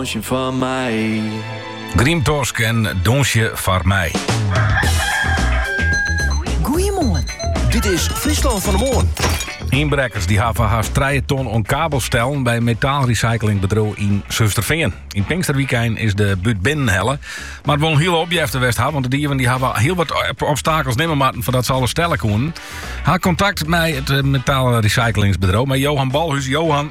Donsje foar my. Grymtosk en Donsje foar my. Goeiemoarn, dit is Fryslân fan de Moarn. Ynbrekkers die hawwe hast trije ton oan kabels stellen by metaalrecyclingbedriuw yn Surhústerfean. Yn pinksterwykein is de bút binnen helle, moat wol in hiele opjefte west ha, want de dieven die hawwe hiel wat obstakels nimme moatten foardat ze alles stelle koenen. Ha kontakt mei it metaalrecyclingsbedriuw, mei Johan Bolhuis. Johan.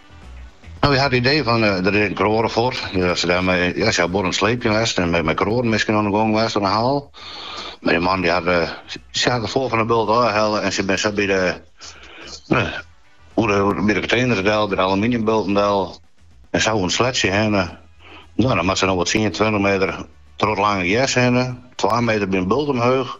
Nou, wy ha it idee fan, der is ek in kroade fuort. As se ha bot oan it sleepjen west en mei kroaden miskien oan de gong west oan de haal. Mar dy man, dy hat, sy ha it foar fan 'e bult ôfhelle en sy bin sa by de, oer de, by de konteners del, by de aluminiumbulten del en sa oan it sleatsje hinne. Nou, dan moatte se noch wol tsien, tweintich meter troch it lange gers hinne. Twa meter by in bult omheech.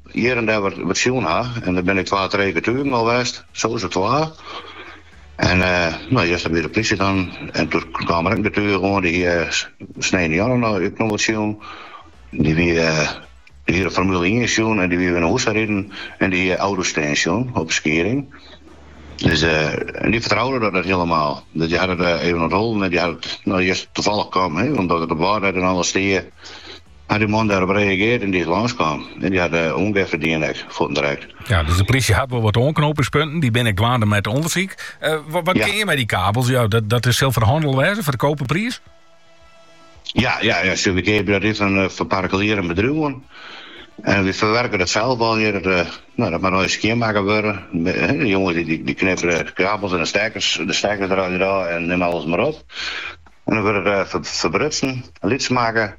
Hjir en dêr wat sjoen ha, en der binne twa, trije getugen al west, sa is it twa. En no juster wie de plysje dan, en doe kaam der ek in getuge oan, dy hie sneintejûn no ek noch wat sjoen. Dy wie, dy hie de Formule ien sjoen en dy wie wer nei hûs ta riden en dy hie auto's stean sjoen op de Skieding. Dus en dy fertroude dat net hielemaal, dus dy hat it even ûntholden en dy hat it no earst tafallich kaam, omdat it op Wâldnet en alles stie. Hat dy man dêrop reagearre en dy is lâns kaam. En dy hat oanjefte dien ek, fuortint direkt. Ja, dus de plysje hat wol wat oanknopingspunten. Dy binne ek dwaande mei it ûndersyk. Ja. Wat kinne je mei dy kabels? Jo, dat, dat is, sil foar hannel wêze foar de koperpriis. Ja, ja, ja, wy keapje dat yn fan eh, fan partikulieren, bedriuwen. En wy ferwurkje dat sels al hjir. Dat, eh, nou, dat moat earst skjinmakke wurde. Me- hè, De jonges dy, dy, dy knippe de kabels en de stekkers, de stekkers derút en neam alles mar op. En dan wurdt it eh, fer- ferbrutsen, lyts makke.